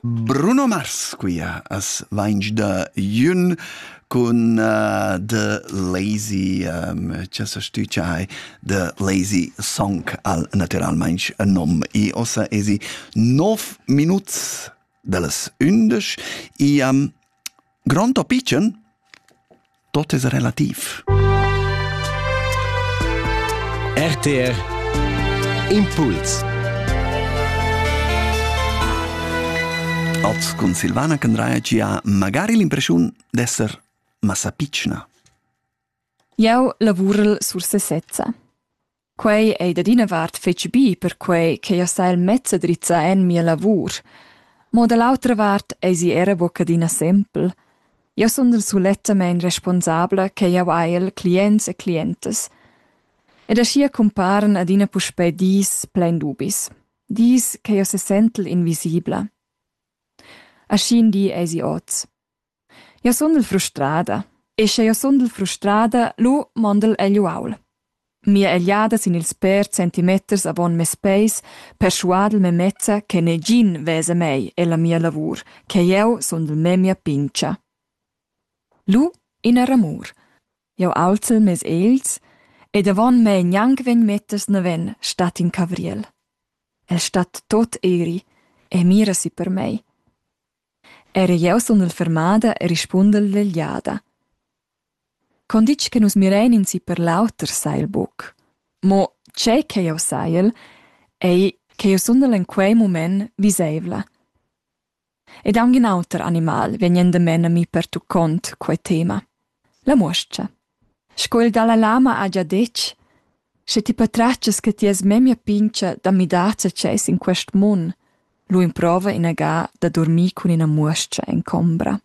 Bruno Mars quia as vainch da Jün cun uh, The Lazy um, cha sa stüdgia hai The Lazy Song al natüralmaing nom e ossa esi 9 minuts da las ündesch e um, Grond o pitschen? Tot es relativ. RTR Impuls Oz cun Silvana Candraia gia magari l'impressiun d'esser massa pitschna. Jau lavurel sur sesezza. Quei ei dad ina vart fetg bi, perquei ch'ei ha sa il mezz a drizzar en mia lavur. Mo da l'autra vart eisi era buca adina sempel. Jeu sundel sulettamein responsabla che jeu hai el clients e clientas. Ed aschia cumparan adina puspei dis plein dubis. Dis che jeu sesentel invisibla. Aschi in di eisi oz. Jeu sundel frustrada e sche jeu sundel frustrada, lu mondel egl uaul. Mia egliada sin ils pèrs centimeters avon mes peis perschuadel memezza che negin vesa mei e la mia lavur, che jeu sundel memia pintga. Lu ina ramur. Jeu aulzel mes egls ed avon mei gnanc vegn meters naven stat in cavriel. El stat tot eri e mira si per mei. Era jeu sundel fermada e rispundel vegliada. Con ditg che nus mirein in si per l'auter sai el buc. Mo tgei che jeu saiel, ei che jeu sundel en quei mument viseivla. Ed aunc in auter animal vegn endamen a mi pertuccont quei tema. La muoscha. Sco il dalla lama ha gia detg, sche ti patratgas che ti has memia pintga da midar zatgei sin quest mun, lu emprova inaga da durmir cun ina muoscha en combra.